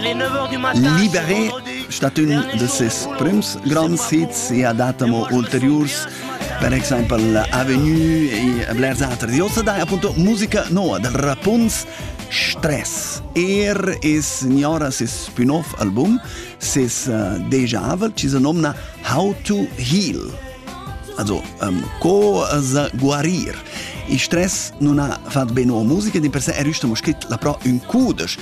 Liberé stat ün de ses prüms gronds hits e ha dat amo ulteriurs per exaimpel Avenue e blers altri. Die heutzutage appunto musica nuova del Rapunz Stress. Er es ignora ses spin-off album, ses uh, déjà-vu, ci se nomna How to Heal. Also, um, cosa guarir. Il stress non ha fatto bene alla musica, di per sé è riuscito a scritto la pro un cudesch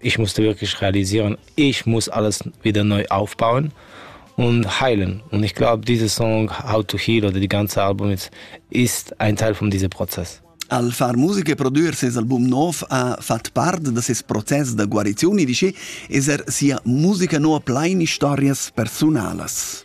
ich musste wirklich realisieren, ich muss alles wieder neu aufbauen und heilen. Und ich glaube, dieser Song How to Heal oder die ganze Album ist ein Teil von diesem Prozess. Al far musica e produrre ses album nov ha fat part da ses process da guarizioni dice es er sia musica no a plain historias personalas.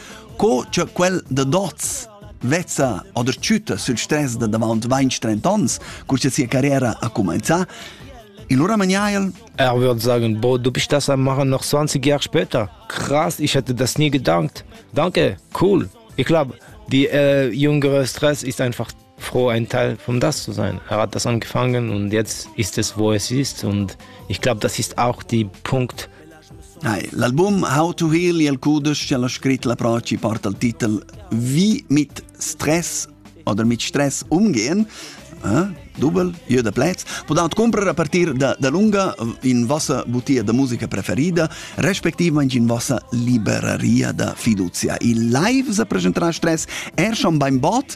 Co che quel da dots vezza o der tschütta sül stress da davant 20-30 ans, cur cha sia carriera ha cumainzà, il lura maniaiel? Er würde sagen, boah, du bist das am machen noch 20 Jahre später. Krass, ich hätte das nie gedankt. Danke, cool. Ich glaube, die äh, jüngere Stress ist einfach froh, ein Teil vom das zu sein. Er hat das angefangen und jetzt ist es, wo es ist. Und ich glaube, das ist auch die Punkt. Nein, l'album How to Heal il Kudisch ha scritto la Braci part al Titel Wie mit Stress oder mit Stress umgehen. Eh? Double, jeder Platz. Podat comprar a partir da, da lunga in vossa butia da musica preferida, respektive in vossa liberaria da fiducia. Il live se presenterà stress er schon beim Bad,